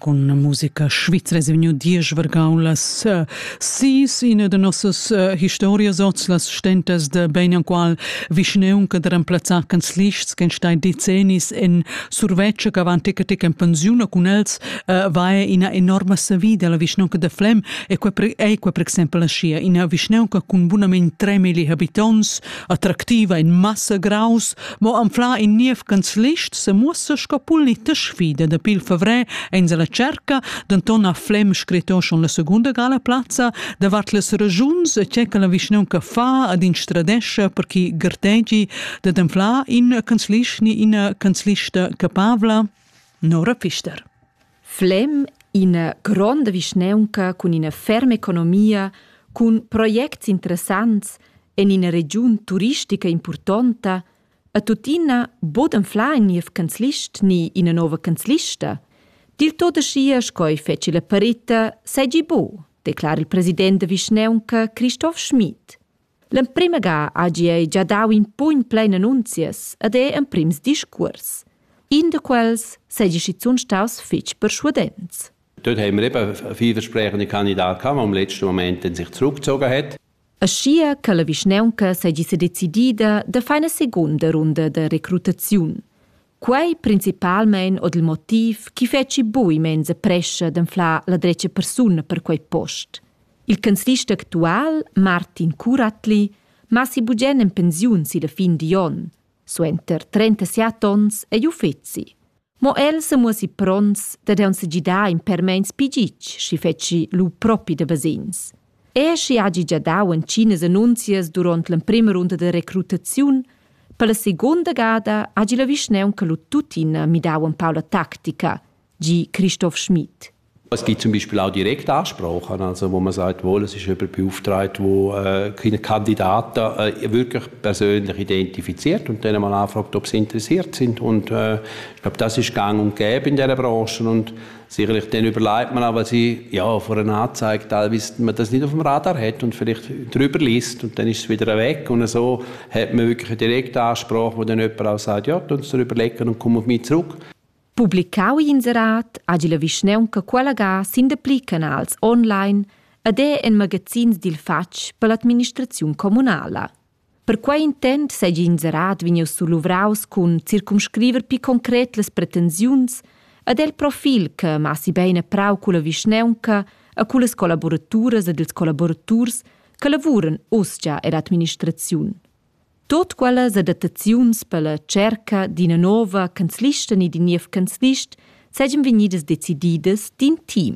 Con musica svizra è vegniu diesch vargau las uh, sis ina de nossas uh, historias oz las stentas de ben enqual vischneun che der emplazzar canzlists che stai decennis en surveccia che van tec en pensiun con els uh, va ina enorma savida la vischneun de Flem e quei ei quei per exempel sia ina vischneun che cun bunament 3.000 habitants attractiva in massa graus Mo anfla in niev canzlist se muossa sco politisch sfida da pil favrer ein se la cerca, denton ha Flem scretto schon la seconda gala plazza davart las ragiuns e che che la vischnaun che fa ad instradescha per chi gartegi da anfla in canzlist ni ina canzlista capavla Nora Pfister. Flem ina gronda vischnaunca cun ina ferma economia, cun projects interessants en ina regiun turistica impurtonta, a tuttina bod anflar in niev canzlist ni ina nova canzlista. Dil tot aschia sco ei feci la parita seigi bu, declara il president da vischnaunca Christoph Schmid. L'emprima ga hagi ei gia dau in pugn plein annunzias ed ei emprims discuors. In da quels seigi schizun staus fetg perschuadents. Dort haben wir eben vielversprechende Kandidat gehabt, der im letzten Moment dann sich zurückgezogen hat. Aschia che la vischnaunca seigi sedecidida da far eine segunda runda da recrutaziun. Quei principalmein ord il motiv chi fetschi bui menza prescha d'anflar la drecha persuna per quei post. Il canzlist actual, Martin Curatli, massi bugen en pensiun silla fin di onn. Suenter 37 onns ei uffeci. Mo el se muossi prons da deun segidar in per meins pigitg, schi fetschi lu propi da vesins. è schi hagi gia dau entginas annunzias duront l'emprema runda de recrutaziun, per la seconda gada hagi la vischnaunca lu tuttina midau empau la tactica, gi Christoph Schmid. Es gibt zum Beispiel auch direkte Ansprachen, also wo man sagt, wohl, es ist jemand beauftragt, wo äh, keine Kandidaten äh, wirklich persönlich identifiziert und dann mal anfragt, ob sie interessiert sind. Und äh, ich glaube, das ist gang und gäbe in dieser Branche und sicherlich dann überlegt man aber sie ja vor einer Anzeige teilweise man das nicht auf dem Radar hat und vielleicht drüber liest und dann ist es wieder weg und so hat man wirklich eine Direktansprache, wo dann jemand auch sagt, ja, tun Sie überlegen und kommen auf mich zurück. Publicau inserat agi la vischneunca quella ga sin de pli canals online ed è en magazins dil fatg per l'administraziun communala. Per quei intent seigi inserat vegnius suluvraus cun circumscriver pli concret las pretensiuns ed el profil che massi bein e prau culla vischnaunca e cullas collaboraturas ed ils collaboraturs che lavuran uschia ed administraziun. Tot quellas adattaziuns per la cerca d'ina nova canzlista ni d'in niev canzlist seigien vegnidas decididas d'in team.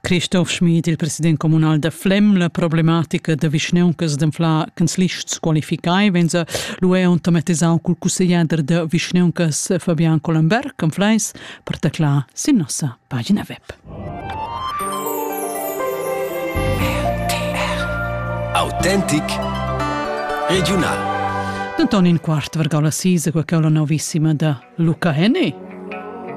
Christoph Schmid, il president communal da Flem, la problematica da vischneuncas d'anflar canzlists qualificai venza l'UE automatisau cul cussegliader da vischneuncas Fabian Collenberg an Fleis per teclar sin nossa pagina web. Autentic Regional Antonin Quart vargau la sisa cu la novissima da Luca Henny.